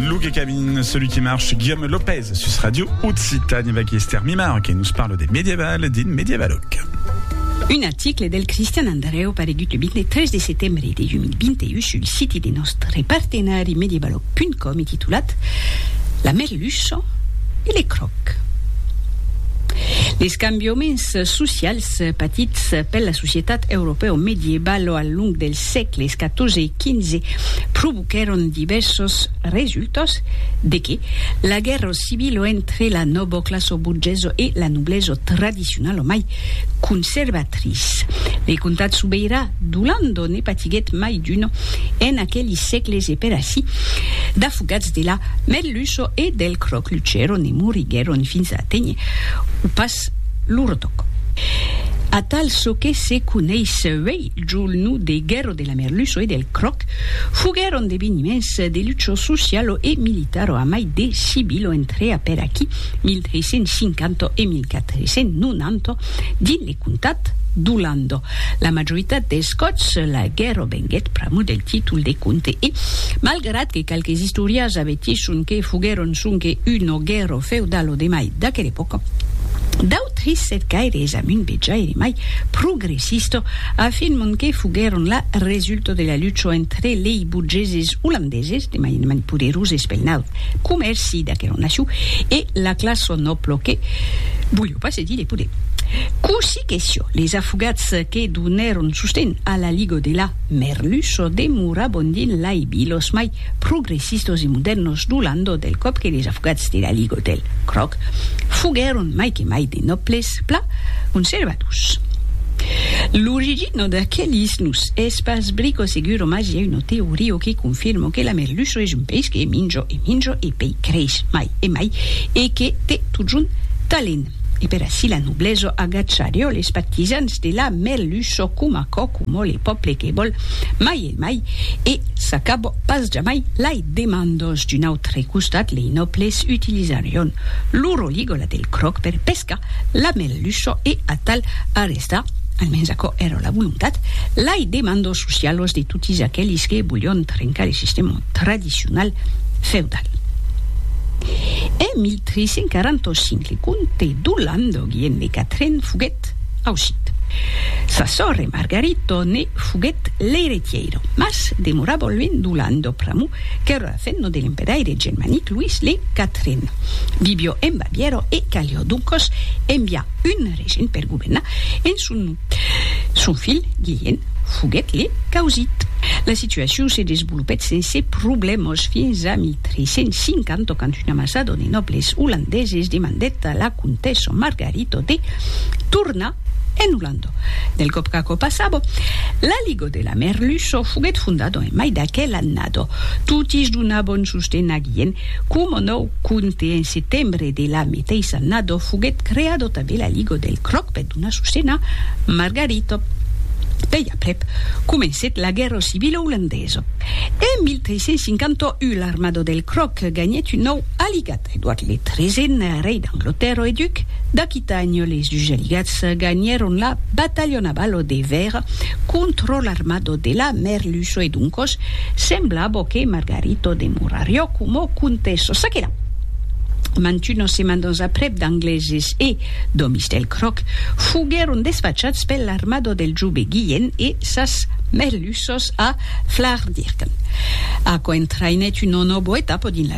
Luc et Cabine, celui qui marche, Guillaume Lopez, sus Radio Occitanie, avec Esther Mimar, qui nous parle des médiévales, din médiévaloc. Un article del Cristian Andreu paregut le 23 de setembre de 2021 sul siti de nòstre partenari medievaloc.com e titulat La merluça e le cròc. Les cambiaments socials patits per la societat europèo medievalo al long del sègles XIV e XV provoquèron divèrsos resultats, de que la guèrra civila entre la noboclassa borgesa e la noblesa tradicionala mai conservatrice. Le comtat sobeirà d'Olanda ne patiguèt mai d'una en aqueli sègles e per ací d'afogats de la merluça e del cròc luchèron e moriguèron fins a aténher o pas lo retoc. Atal çò que se coneis uèi Julnu de Guerro de la Merluço e del Croc foguèron d'eveniments de lucho socialo e militaro a mai de civilo entre apèr aquí 1350 e 1490 dins le comtat d'Olando. La majoritat dels còps la guerro venguèt pr'amor del títol de comte e, malgrat que qualques istòrias avertisson que foguèron sonque una guerro feudal o demai d'aquela epòca, d'autres cercaires amunt vejaire mai progressista. Sisto afirmon que foguèron la resulta de la lucha entre lei burgeses olandeses, de mainament poderoses pel naut comèrci d'aquela nacion, e la classa nòbla que voliá pas cedir de poder. Cossí que siá, les afogats que donèron sosten a la liga de la Merluça demorabon dins lei vilas mai progressistos e modèrnos du Landau del còp que les afogats de la Ligue Hôtel Cròc foguèron mai que mai de nòbles pla conservadors. L'origina d'aquelis nos es pas brico seguro mas i a una teoria que confirma que la merluça es un peish que minja e minja e pei creix mai e mai e que te totjorn talent. E per ací la noblesa agacharió les partisans de la merluça coma cò coma le pòble que vòl mai e Emai, e s'acabò pas jamai lai demandos. D'un autre costat, lei nòbles utilizarion lo roligola del cròc per pescar la merluço e atal arrestar, almens aquò èra la volontat, lai demandos socialos de totis aquelis que volion trencar le sistèma tradicional feudal. En 1345, le comte d'Olandoguien de Catren foguèt ausit. Sa sòrre Margarito ne. Foguèt l'eiretièira, mas demorà bolvent d'Olan do pr'amor qu'èra fenno de l'empedaire germanic Louis le Quatren. Vivió en Bavièra e calió doncas enviar un regent per governar en son nom. Son filh Guilhèn foguèt le causit. La situacion se desvolopèt sense problèmas fins a 1350 quand una masada de nòbles olandeses demandèt a la comtessa Margarita de tornar En Holanda, del còp qu'aquò passava, la Liga de la Merluço foguèt fondada en mai d'aquel annada. Totis donabon sosten aguien, coma nòu compte en setembre de la meteissa annada foguèt creada tanben la Liga del Cròc per donar sosten a Margarita. Pei aprèp, comencèt la guèrra civila olandesa. En 1351 l'armada del Cròc ganhèt un nòu aligat. Edward le Tresen, rei d'Anglotèrra e duc d'Aquitània, les dus aligats ganhèron la batalha naval au Dever contra l'armada de la Merluço e doncas semblava que Margarita demorariá coma comtessa. Ça que la! Mantunas setmanas aprèp d'Angleses e d'òmis del Croc foguèron desfachats per l'armada del jove Guilhen e sas Merluças a Flardirken, aquò entraïnèt una nòva etapa dins la.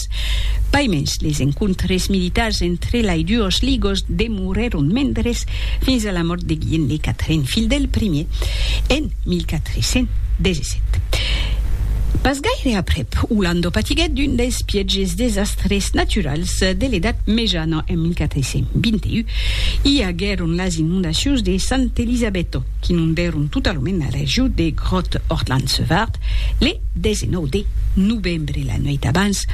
Amics. Pas mens, les encontres militars entre lai duos ligos demorèron mendres fins a la mòrt de Guilhem le Quatren, filh del primier, en 1417. Pas gaire aprèp, Olando patiguèt d'un dels pièges desastres naturals de l'Edat Mejana en 1421. I aguèron las inondacions de Sant'Elisabetto, qu'inondèron totalament la region de Grotte-Ortland-Sevart le 19 de novembre. Bre la nuèit abans,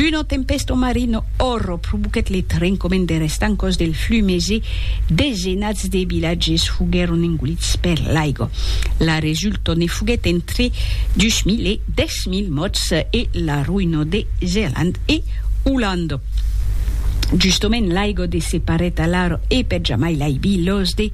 una tempèsta marina òrra provoquèt le trencament der estancòs del Flumés e desenats de vilatges foguèron engolits per l'aiga. La resulta ne foguèt entre 2.000 e 10.000 mòrts e la roïna de Zealand e Olanda. Justament l'aiga de separèt alara e per jamai l'aibi los de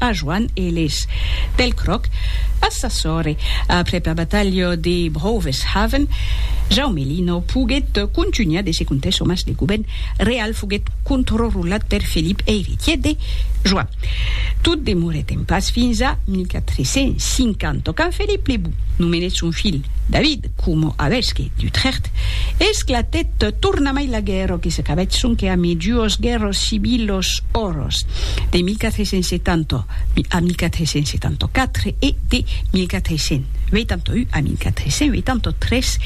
a Joan Eles. Pel cròc, pas sa sòrre. Aprèp la batalha de Broveshaven, Jaume Lino poguèt contunhar de se contar çò mas de govèrn real foguèt controrulat per Felip eiritièr de Joan. Tot demorèt en pas fins a 1450 quand Felip le Bon nomenèt son filh David, coma avesqui d'Utrecht, esclatèt tornamai la guèrra que s'acabèt sonque a mejuos guèrras civilos oros de 1470 a 1474 e de 1481 a 1483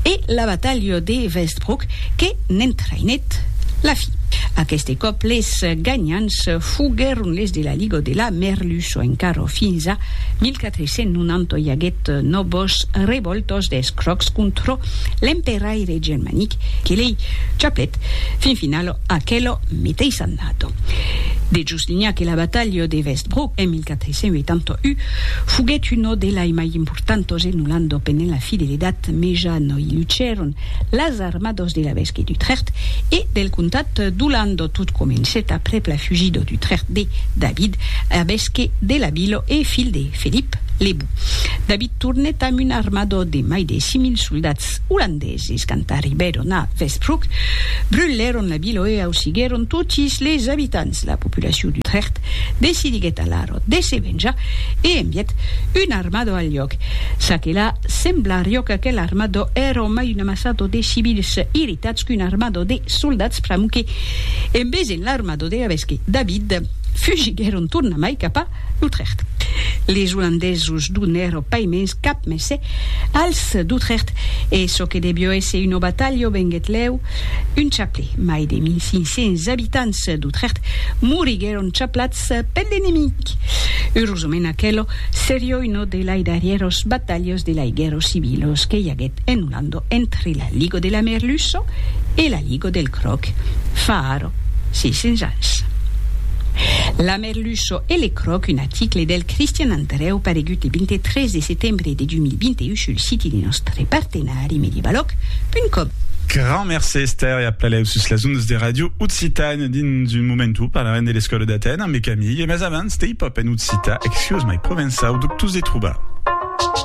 e la batalha de Westbroek que n'entraïnèt la fin. Aqueste còp les ganhants foguèron les de la Liga de la Merluço encara fins a 1485. Se non anto i aguèt nòbos revòltos des crocs contrò l'emperaire germanic que lei chaplèt fin finalo aquelo meteis annato. De Juslinha que la batalha de Westbrook en 1481 foguèt uno delai mai importantos e nolando penent la fidelitat meja no i lucèron las armados de l'evesque d'Utrecht e del comtat d'Olando. Tot comencèt aprèp la fugida d'Utrecht de David, evesque de la vila e filh de Felip le Bou. David tornèt amb un armada de mai de 6.000 soldats olandeses. Quand arribèron a Westbroek, brulèron la vila e ausiguèron totis les abitants. La populacion d'Utrecht decidiguèt alara de se venjar e envièt una armada al lhòc. Ça que la, sembla riòca que l'armada èra mai una Sato de civils irritats qu'un armado de soldats framuque en vesent l'armado de Rabesque David, fugiguèron tornamai cap a L'Utrecht. Les Olandesos donèro pas mens cap messe als d'Utrecht e çò que devió èsser una batalha venguèt lèu un chaplè. Mai de 1.500 abitants d'Utrecht moriguèron chaplats Ets pèn d'enemic! Eurosament aquelo serió uno de lai darrièros batalhos de lai guèrros civilos que i aguèt en Olando entre la Ligo de la Merluço e la Ligo del Cròc fa ara 600 ans. La Merluço e le Cròc un aticle del Cristian Andrèu paregut le 23 de setembre de 2021 sul siti de nòstre partenari medievaloc.com. Grand mercé Esther e a plaleau sus las ondas de Radio Occitània. Dins un momentu parlarem de l'escòla d'Atèn ambe Camille, mas abans, Stay Pop en occitan, Excuse my provençau, dubtós de trobar.